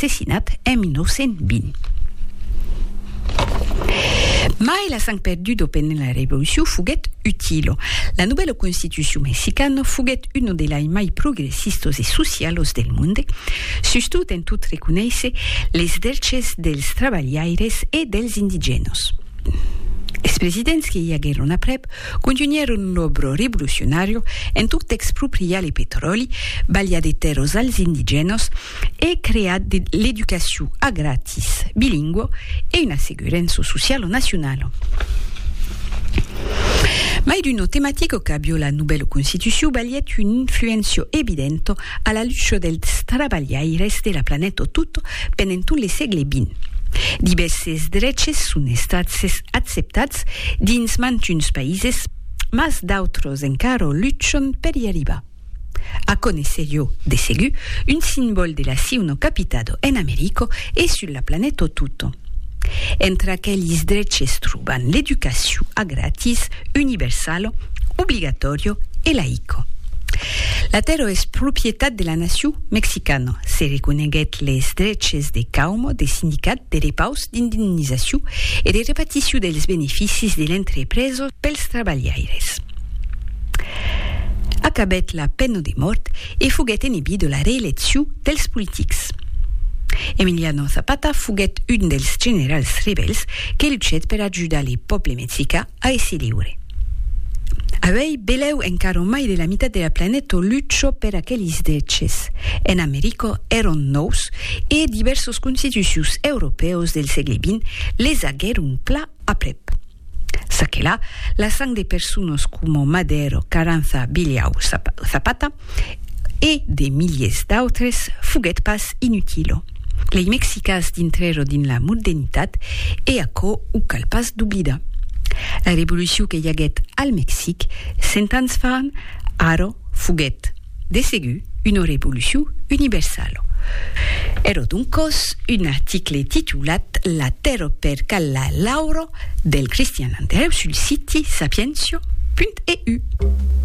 assassinat en 1920. Mai la sang perdudo pendent la Revolucion foguèt utilo. La novèla Constitucion mexicana foguèt una de lai mai progressistos e socialos del monde, sustot en tot reconéisser les drches dels trabalhaires e dels indigènos. Es presidents que i aguèron aprèp contunhèron l'òbro revolucionàrio en tot expropriar le petròli, balhar de tèrras als indigènos, e crear de l'educacion a gratis bilingua e una segurença sociala nacionala. Mai d'una tematica qu'a viu la novèla Constitucion balhèt una influéncia evidenta a la lucha dels trabalhaires de la planeta tota pendent tot le sègle xx. Divèrses dreches son estats acceptats dins mantuns païses, mas d'autres encara luchan per i arribar. A conéisser jo, de segur, un simbòl de la siu no capitado en Americo e sul la planèto tuto. Entre aquelis dreches troban l'educaciu a gratis, universalo, obligatorio e laico. La tèrra es propietat de la naciu mexicano, se reconeguèt les dreches de cauma de sindicat, de repaus, d'indemnizaciu e de reparticiu dels beneficis de l'entrepresa pels trabalhaires. Acabèt la pena de mòrt e foguèt enebit de la reelecciu dels politics. Emiliano Zapata foguèt un dels generals rebèls que luchèt per ajudar le pòble mexicà a èsser liure. Avèi belèu encara mai de la mitat de la planeta lucha per aquelis dreches. En America èron nòus e divèrsos constitucions europèus del sègle xx les aguèron plan aprèp. Ça que la, la sang de persones coma Madero, Carranza, Bilhau, Zapata e de miliers d'autres foguèt pas inutilo. Lei mexicas dintrèro dins la mordenitat e aquò o cal pas d'oblidar. La revolucion que i aguèt al Mexic cent ans fan, ara foguèt. De segur, una revolucion universala. Ero doncòs un article titulat La tèrra per Calla Lauro del Christian Andereu sul siti sapientia.eu.